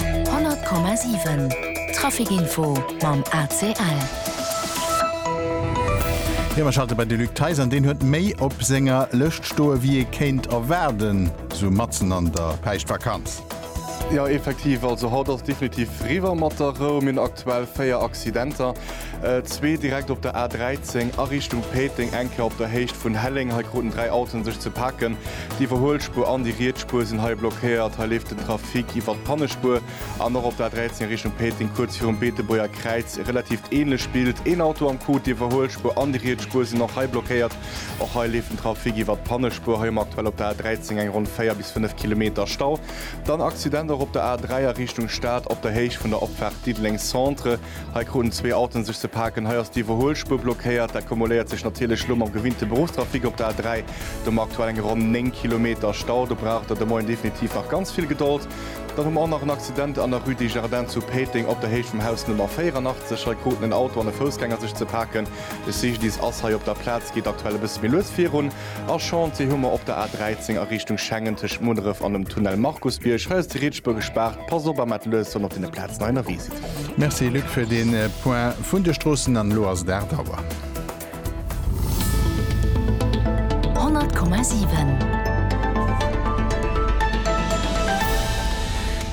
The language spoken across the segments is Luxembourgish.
100,7 Trafic Info mam ACL. Jo, mer schalte bei de Luc Theis an. Deen huet méi op senger Lëscht stoe wéi ee kéint erwaarden, sou matzen an der Päischtvakanz. Jo, effektiv, also haut ass definitiv riwwer mat der Rou. Mir hunn aktuell 4 Accidenter. Zwee direkt op der A13 a Richtung Péiteng, eng Kéier op der Héicht vun Helleng. Hei kruten dräi Autoen sech ze paken. D'Iwwerhuelspuer an déi riets Spuer sinn hei blockéiert. Hei leeft den Trafic iwwert d'Pannespuer. An och op der A13 a Richtung Péiteng, kuerz virum Beetebuerger Kräiz, e relatiivt ähnlecht Bild. Een Auto am Coup, d'Iwwerhuelspuer an déi riets Spuer sinn och hei blockéiert. Och hei leeft den Trafic iwwert d'Pannespuer. Hei hu mer aktuell op der A13 eng ronn 4 bis 5 Kilometer Stau. Dann Accident och op der A3 a Richtung Stad op der Héicht vun der Opfaart Diddeleng Centre. Hei kruten zwee Autoen sech ze paken. Hei ass d'Iwwerhuelspuer blockéiert. Dat kumuléiert sech natierlech elo mam gewinnte Beruffstrafic op der A3. Do hu mer aktuell eng ronn 9 Kilometer Stau. Do braucht Der de Moien definitiv nach ganz vill Gedold. Dann hu mer och nach en Accident an der Rue des Jardins zu Péiteng op der Héicht vum Haus Nummer 84. Hei kruten en Auto an e Foussgänger sech ze paken. De CGDIS ass hei op der Plaz, geet aktuell e bësse méi lues virun. A Chantier hu mer op der A13 a Richtung Schengen tëscht Munneref an dem Tunnel Markusbierg. Hei ass déi riets Spuer gespaart. Passt op, a maacht lues, wann Der op deene Plazen hei ënnerwee sidd. Merci Luc fir dee Point vun de Stroossen. An elo ass et 8 Auer.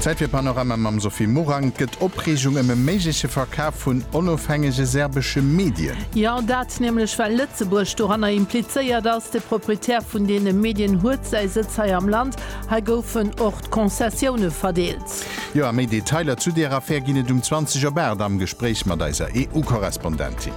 Zäit fir Panorama mam Sophie Morang. Et gëtt Opreegung ëm e méigleche Verkaf vun onofhängege serbesche Medien. Jo, dat nämlech well Lëtzebuerg doranner implizéiert ass. De Proprietär vun deene Medien huet säi Sëtz hei am Land. Hei goufen och d'Konzessioune verdeelt. Jo a méi Detailer zu deer Affär ginn et um 20 op 8 am Gespréich mat eiser EU-Korrespondentin.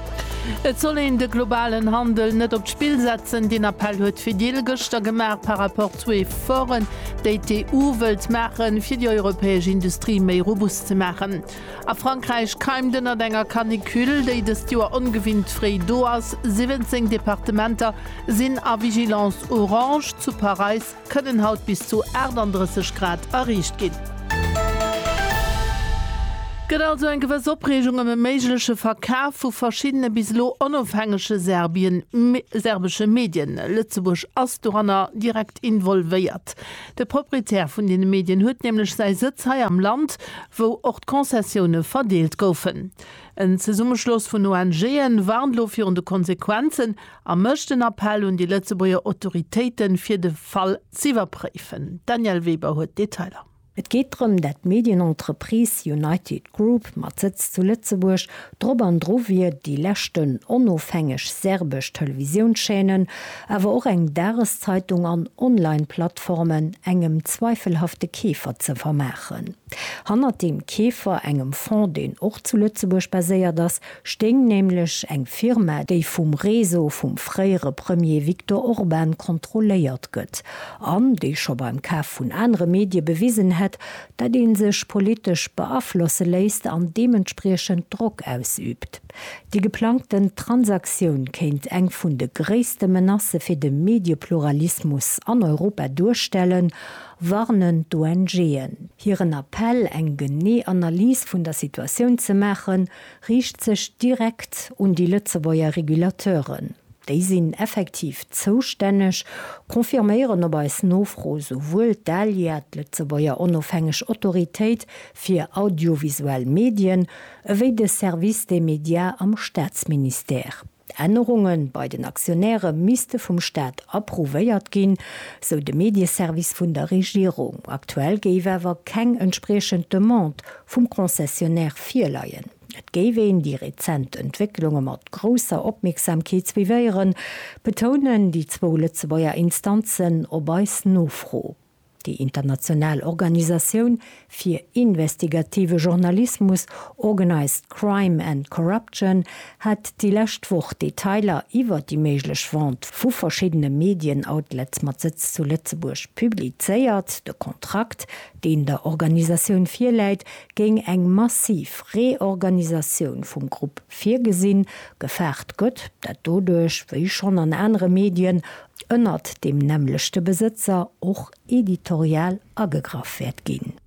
Et soll een de globalen Handel net op d'Spill setzen, deen Appell huet d'Fedil gëschter gemaach par rapport zu Efforten, déi d'EU wëllt maachen, fir déi europäesch Industrie méi robust ze maachen. A Frankräich keimt ënnert enger Canicule, déi dëst Joer ongewinnt fréi do ass, 17 Departementer sinn a Vigilance orange, zu Paräis, kënnen haut bis zu 38 Grad erreecht ginn. Gëtt also eng gewëss Opreegung ëm e méigleche Verkaf vu verschiddene bis elo onofhängege Serbien, serbesche Medien. Lëtzebuerg ass doranner direkt involvéiert. De Proprietär vun deene Medien huet nämlech säi Sëtz hei am Land, wou och d'Konzessioune verdeelt goufen. En Zesummeschloss vun ONGen warnt elo virun de Konsequenzen, A mécht en Appell un déi Lëtzebuerger Autoritéiten, fir de Fall z'iwwerpréifen. D'Danièle Weber huet d'Detailer. Et geet drëm, dat d'Medienentreprise United Group mat Sëtz zu Lëtzebuerg drop an dru wier, déi leschten onofhängeg serbesch Televisiounschaînen, awer och eng Dageszeitung an Online-Plattformen engem zweifelhafte Keefer ze vermaachen. Hannert deem Keefer, engem Fonds, deen och zu Lëtzebuerg baséiert ass, stéing nämlech eng Firma, déi vum Réseau vum fréiere Premier Viktor Orban kontrolléiert gëtt an déi scho beim Kaf vun anere Medie bewisen hätt, datt ee sech politesch beaflosse léisst an deementspriechend Drock ausüübt. Déi geplangten Transaktioun kéint eng vun de gréisste Menacë fir de Mediepluralismus an Europa duerstellen, warnen d'ONGen. Hiren Appell, eng genee Analys vun der Situatioun ze maachen, riicht sech direkt un déi Lëtzebuerger Regulateuren. Déi sinn effektiv zoustänneg, confirméieren op eis Nofro souwuel d'ALIA, d'Lëtzebuerger onofhängeg Autoritéit fir audiovisuell Medien, ewéi de Service des médias am Staatsministère. D'Ännerunge bei den Aktionäre misste vum Staat approuvéiert ginn, sou de Medieservice vun der Regierung. Aktuell géif awer keng entspriechend Demande vum Concessionnaire virleien. Et géif een déi rezent Entwécklunge mat grousser Opmierksamkeet suivéieren, betounen déi zwou Lëtzebuerger Instanzen op eis Nofro. Déi international Organisatioun fir investigative Journalismus Organised Crime and Corruption hat déi lescht Woch Detailer iwwer déi méiglech Vente vu verschiddene Medien-Outlets mat Sëtz zu Lëtzebuerg publizéiert. De Kontrakt, deen der Organisatioun virläit, géing eng massiv Reorganisatioun vum Grupp virgesinn. Gefaart gëtt, dat doduerch, wéi schonn an anere Medien, ënnert deem nämmlechte Besëtzer och editorial agegraff wäert ginn.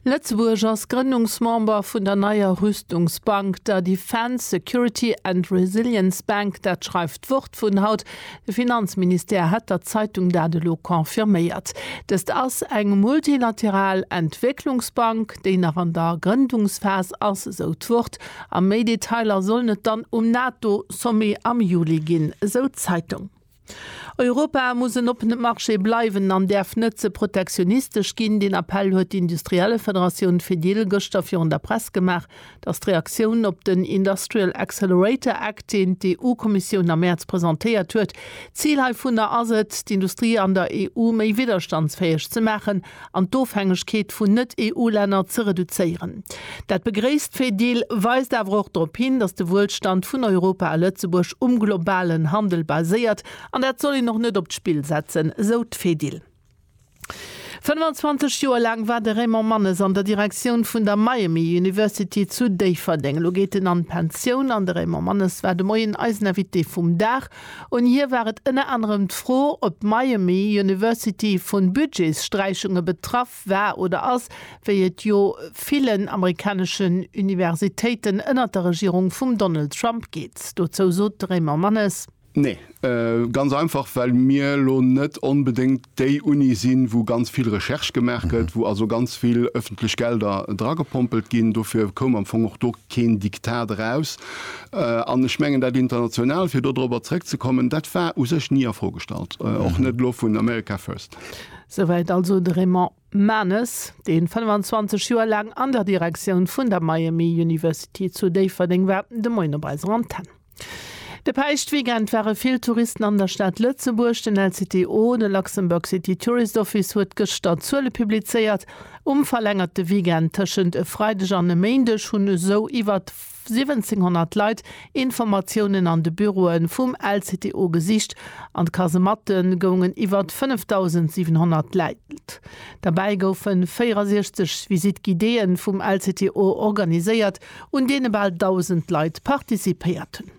Lëtzebuerg ass Grënnungsmember vun der neier Rüstungsbank, der Defence, Security and Resilience Bank, dat schreift d'Wort vun haut. De Finanzministère hätt der Zeitung dat elo confirméiert. Dëst ass eng multilateral Entwécklungsbank, déi nach an der Grëndungsphas ass, esou d'Wort. A méi Detailer sollen et dann um NATO-Sommet am Juli ginn, esou d'Zeitung. Europa muss en oppene Marché bleiwen an däerf net ze protektionistesch ginn. Deen Appell huet d'Industriellefederatioun Fedil gëschter virun der Press gemaach. Et ass d'Reaktioun op den Industrial Accelerator Act, deen d'EU-Kommissioun am Mäerz presentéiert huet. D'Zil heivunner ass et, d'Industrie an der EU méi widderstandsfäeg ze maachen an d'Ofhängegkeet vun Net-EU-Länner ze reduzéieren. Dat begréisst d'Fedil, weist awer och drop hin, datt de Wuelstand vun Europa a Lëtzebuerg um globalen Handel baséiert an dat soll een och net op d'Spill setzen, sou d'Fedil. 25 Joer laang war de Raymond Mannes an der Direktioun vun der Miami University zu Déifferdeng. Elo geet en an d'Pensioun an de Raymond Mannes war de Moien eisen Invité vum Dag. Un hie war et ënner anerem d'Fro, ob d'Miami University vu Budgetssträichunge betraff war oder ass, wéi et jo villen amerikaneschen Universitéiten ënnert der Regierung vum Donald Trump geet. Dozou sot de Raymond Mannes. Nee, ganz einfach, well mir elo net onbedéngt déi Unie sinn, wou ganz vill Recherche gemaach gëtt, wou also ganz vill öffentlech Gelder dragepompelt ginn. Dofir koum am Fong och do keen Diktat eraus. An ech mengen, dat International, fir do dorobber zrëckzekommen, dat war u sech ni a Fro gestallt, och net elo vun America First. Souwäit also de Raymond Manes, dee 25 Joer laang an der Direktioun vun der Miami University zu Déifferdeng war, de Moien op eiser Antenne. De Päischtweekend ware vill Touristen an der Stad Lëtzebuerg. Den LCTO, de Luxembourg City Tourist Office, huet gëschter Zuele publizéiert. Um verlängerte Weekend tëschent e Freideg an e Méindeg hunn esou iwwer 1700 Leit Informatiounen an de Büroe vum LCTO gesicht an d'Kasematte goungen iwwer 5.700 Leit. Derbäi goufe 64 Visite-guidéë vum LCTO organiséiert. un deene bal 1.000 Leit participéiert hunn.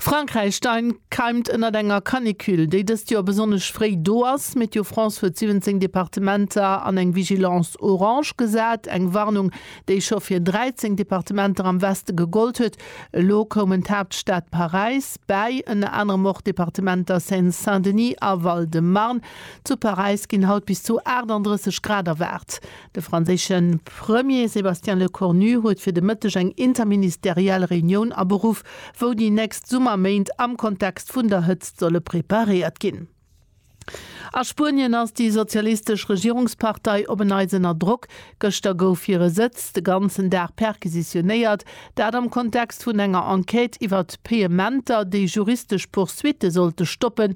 Frankräich dein keimt ënnert enger Canicule, déi dëst Joer besonnesch fréi do ass. Météo France huet 17 Departementer an eng Vigilance orange gesat, eng Warnung, déi scho fir 13 Departementer am Weste gegollt huet. Elo koumen d'Haaptstad Paräis bäi, ënner anerem och d'Departementer Seine-Saint-Denis a Val-de-Marne. Zu Paräis ginn haut bis zu 38 Grad erwaart. De franséische Premier Sébastien Lecornu huet fir de Mëtteg eng interministeriell Reunioun aberuff, wou déi nächst Summerméint am Kontext vun der Hëtzt solle preparéiert ginn. A Spuenien ass déi sozialistesch Regierungspartei op en Neits ënner Drock. Gëschter gouf hire Sëtz de ganzen Dag perquisitionéiert, dat am Kontext vun enger Enquête iwwert Payementer, déi juristesch Poursuitte sollte stoppen,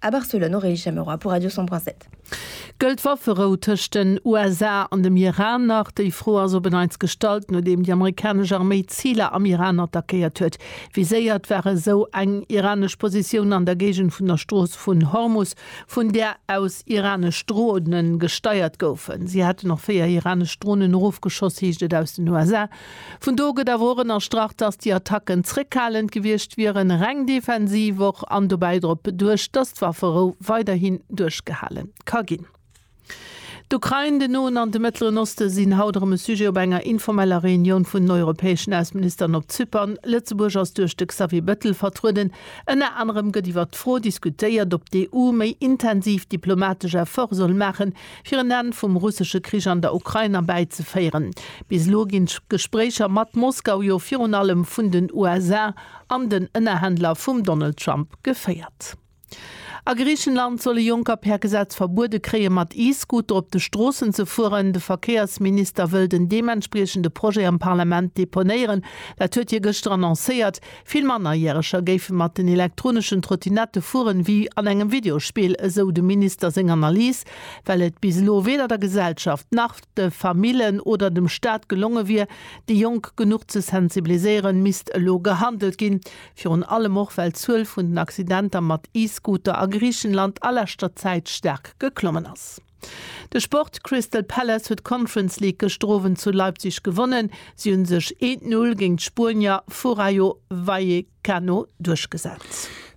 A Barcelone o Rei Chamorro a pour Radio São Brás et. Gëllt d'Wafferou tëscht den USA an dem Iran nach? Déi Fro ass op en Neits gestallt, nodeem déi amerikanesch Arméi Ziler am Iran attackéiert huet. Viséiert war esou eng iranesch Positioun an der Géigend vun der Strooss vun Hormus, vun där aus iranesch Drone gesteiert goufen. Si hätten och véier iranesch Dronen erofgeschoss, heescht et aus den USA. Vun do gëtt awer och ënnerstrach, datt déi Attacken zréckhalend gewiescht wieren, reng defensiv och, an dobäi drop duecht, datt d'Wafferou weiderhin duerchgehale ka ginn. D'Ukrain, den Noen an de Mëttleren Oste sinn haut erëm e Sujet op enger informeller Reunioun vun den europäeschen Ausseministeren op Zypern. Lëtzebuerg ass duerch de Xavier Bettel vertrueden. Ënner anerem gëtt iwwert d'Fro diskutéiert, ob d'EU méi intensiv diplomatesch Efforte soll maachen, fir en Enn vum russesche Krich an der Ukrain erbäizeféieren. Bis elo ginn d'Gespréicher mat Moskau jo virun allem vun den USA an den Ënnerhändler vum Donald Trump geféiert. A Griichenland soll e Jonker per Gesetz verbuede kréie mat E-Scooter op de Stroossen ze fueren. De Verkéiersminister wëll den deementspriechende Projet am Parlament deponéieren. Dat huet hie gëschter annoncéiert. Vill Mannerjäreger géife mat den elektroneschen Trottinette fueren, wéi an engem Videospill, esou dem Minister seng Analys, well et bis elo weder der Gesellschaft nach de Famillen oder dem Staat gelonge wier, déi Jonk genuch ze sensibiliséieren, misst elo gehandelt ginn. Virun allem och, well d'Zuel vun den Accidenter mat E-Scooter a Griichenland a leschter Zäit staark geklommen ass. De Sport, Crystal Palace huet d'Conference League gëschter Owend zu Leipzig gewonnen. Si hunn sech eent Null géint d'Spuenier vu Rayo Vallecano duerchgesat.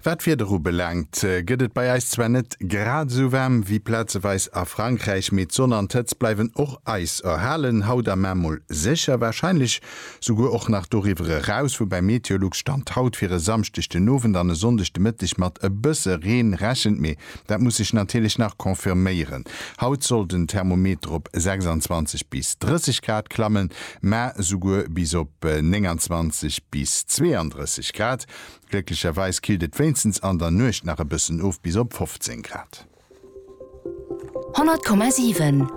Wat d'Wieder ubelaangt, gëtt et bei eis zwar net grad esou waarm wéi plazeweis a Frankräich, mee d'Sonn an d'Hëtzt bleiwen och eis erhalen, haut am Emol sécher, warscheinlech souguer och nach doriwwer eraus, woubäi Meteolux Stand haut fir e Samschdeg den Owend an e Sonndeg de Mëtteg mat e bësse Reen rechent. Mee Dat muss sech natierlech nach confirméieren. Haut soll den Thermometer op 26 bis 30 Grad klammen, mä souguer bis op 29 bis 32 Grad. Glécklecherweis killt et wéinstens an der Nuecht nach e bëssen of bis op 15 Grad. 100,7.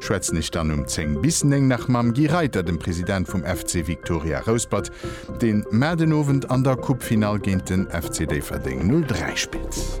Schwätzen ech dann um 10 bis 9 nach mam Guy Reiter, dem President vum FC Victoria Rouspert, deen mar den Owend an der Coupe-Finall géint den FC Déifferdeng 03 spillt.